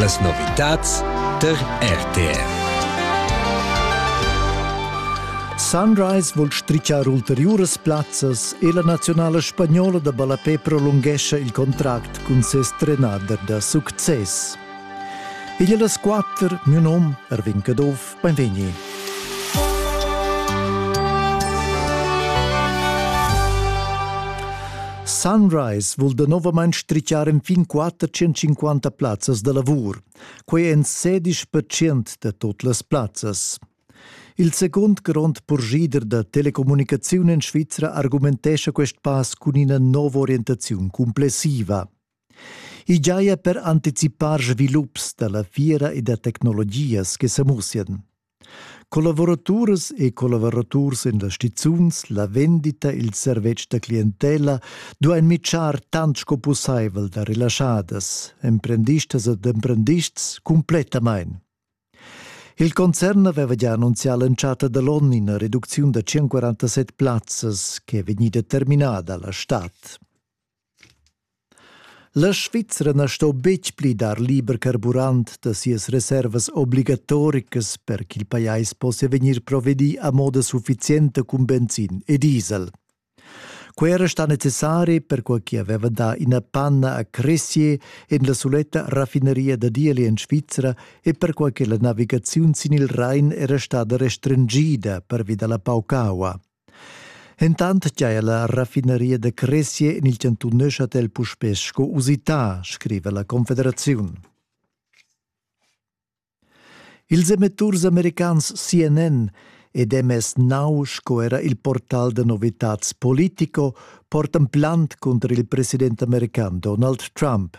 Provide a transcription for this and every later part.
Las novitads tar RTR. Sunrise vul strichar ulteriuras plazzas e la naziunala spagnola da ballapè prolunghescha il contract cun ses trenader da success. Igl è las quatter, miu num, Erwin Caduff, Beinvegni. Sunrise vul danovamein strichiar enfin 450 plazzas da lavur. Quei ein 16% da tot las plazzas. Il secund grond purschida da telecommunicaziun en Svizra argumentescha quest pass cun ina nova orientaziun complessiva. I giaja per anticipar svilups da la fiera e da tecnologias che sa mussian. Collavuraturas e collavuraturs en las stizuns, la vendita, il servetsch da clientela duain mitschar tant sco pussaivel da relaschadas, emprendistas ed emprendists cumplettamain. Il concern aveva già annunzià l'entschatta da l'onn ina reducziun da 147 plazzas che è vegnida terminada la stad. La Svizra na sto betg pli dar liber carburant da sias reservas obligatoricas per ch'il pajais possia vegnir provedì a moda suffizienta cun benzin e diesel. Quai era stà necessari perquai ch'i aveva dà ina panna a Cressier en la suletta raffineria da Dieli en Svizra e perquai che la navigaziun sin il Rain era stada restringida pervi da la paucaua. Entant cha la raffinaria da cresia in il chantun Neuchâtel puspè sco usità, scriva la Confederaziun. Ils emitturs americans CNN ed MS Now sco era il portal da novitads Politico portan plant cunter il president american Donald Trump.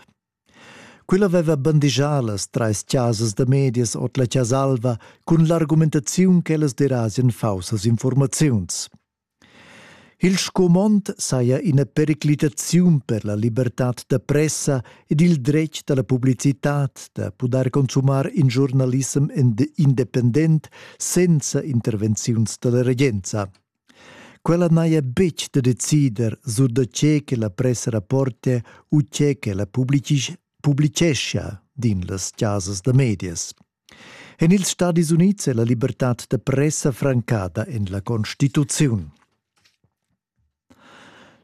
Quella veva bandigià las trais chasas da medias ord la Chasa Alva cun l'argumentaziun ch'ellas derasien faussas informaziuns. Il scumond saja ina periclitaziun per la libertad da pressa ed il dretg da la publicitad da pudair consumar in giornalissem independent senza intervenziuns da la regenza. Quella n'haja betg da decider sur da tge che la pressa rapportia u tge ch'ella publitgeschia, din las chasas da medias. En ils Stadis Unids è la libertad da pressa francada en la Constituziun.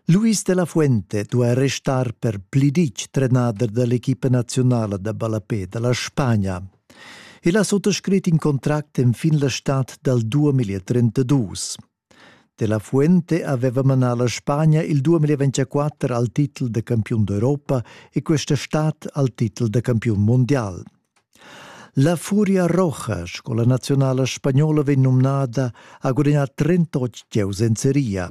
Luis de la Fuente duai restar per pli ditg trenader da l'equipa nazionala da ballapé da la Spagna, El ha suttascrit in contract enfin la stad dal 2032. Della Fuente aveva manà la Spagna il 2024 al titel da campiun d'Europa e questa stad al titel da campiun mondial. La Furia Roja, scola nazionale spagnola, venne nominata, ha guadagnato 38 giocatori in Serie A.